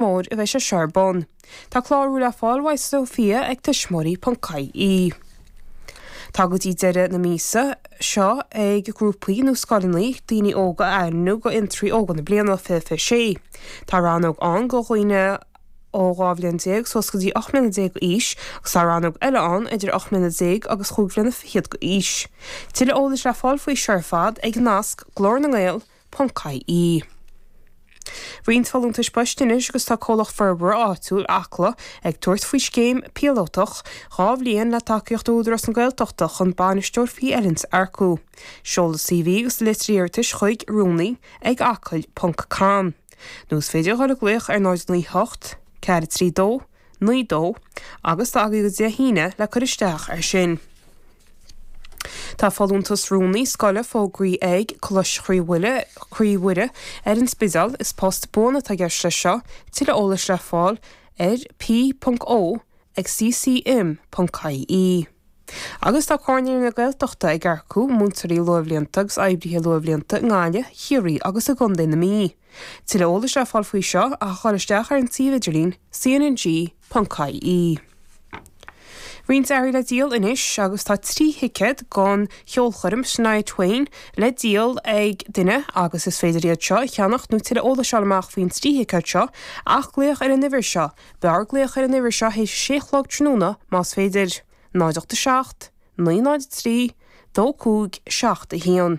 mór a bheidh sé seo ar bun. Tá clárú le fáil uaidh Sofia ag tuismitheoirí.ie. Tá go dtí deireadh na míosa seo ag grúpaí nó scoileanna daoine óga a ainmniú do Fhiontraí Óga na Bliana 2026. Tá rannóg ann do dhaoine ó 12 bhliain suas go dtí 18 mbliana d'aois agus tá rannóg eile ann idir 18 mbliana agus chúig bhliana fichead d'aois. Tuilleadh eolais le fáil faoi seo ar fad ag nasc, Glór na nGael. Ponc-IE. Roinnt folúntais poist anois agus tá Comhlacht Forbartha Áitiúil Acla ag tabhairt faoi scéim píolótach dhá bhliain le tacaíocht ó Údarás na Gaeltachta chun Bainisteoir faoi oiliúint a earcú. Seoladh CV agus litir iarratais chuig, Rúnaí ag acaill ponc com, nó is féidir a dhul ag glaoch ar 098 432 9 dó, agus tá agaibh go dtí Dé hAoine le cur isteach air sin. Tá folúntas rúnaí scoile fógraithe ag Coláiste Chroí Mhuire ar an Spidéal. Is post buan atá i gceist leis seo. Tuilleadh eolais le fáil ar p.o ag ccm.ie Agus tá Comhar Naíonraí na Gaeltachta ag earcú múinteoirí luathbhlianta agus oibrithe luathbhlianta i nGaillimh, Ciarraí agus i gContae na Mí. Tuilleadh eolais le fáil faoi seo ach a ghoil isteach ar an tsuíomh idirlín cnng.ie. Roinnt earraí le díol anois agus tá trí thicéad don cheolchoirm Shania Twain le díol ag duine agus is féidir iad seo a cheannach nó tuilleadh eolais a fháil amach faoin trí thicéad seo ach glaoch ar an uimhir seo, b'fhearr glaoch ar an uimhir seo théis a sé a chlog tráthnóna más féidir, 0 8 7 9 0 3 2 5 7 1.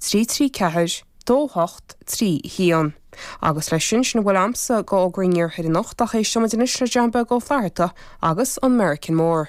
trí trí ceathair dó hocht trí haon. Agus leis sin, sin a bhfuil a'msa go Fhógraí an Iarthair anocht, ach éistfimid anois le John Beag Ó Flatharta agus an Meiricean Mór.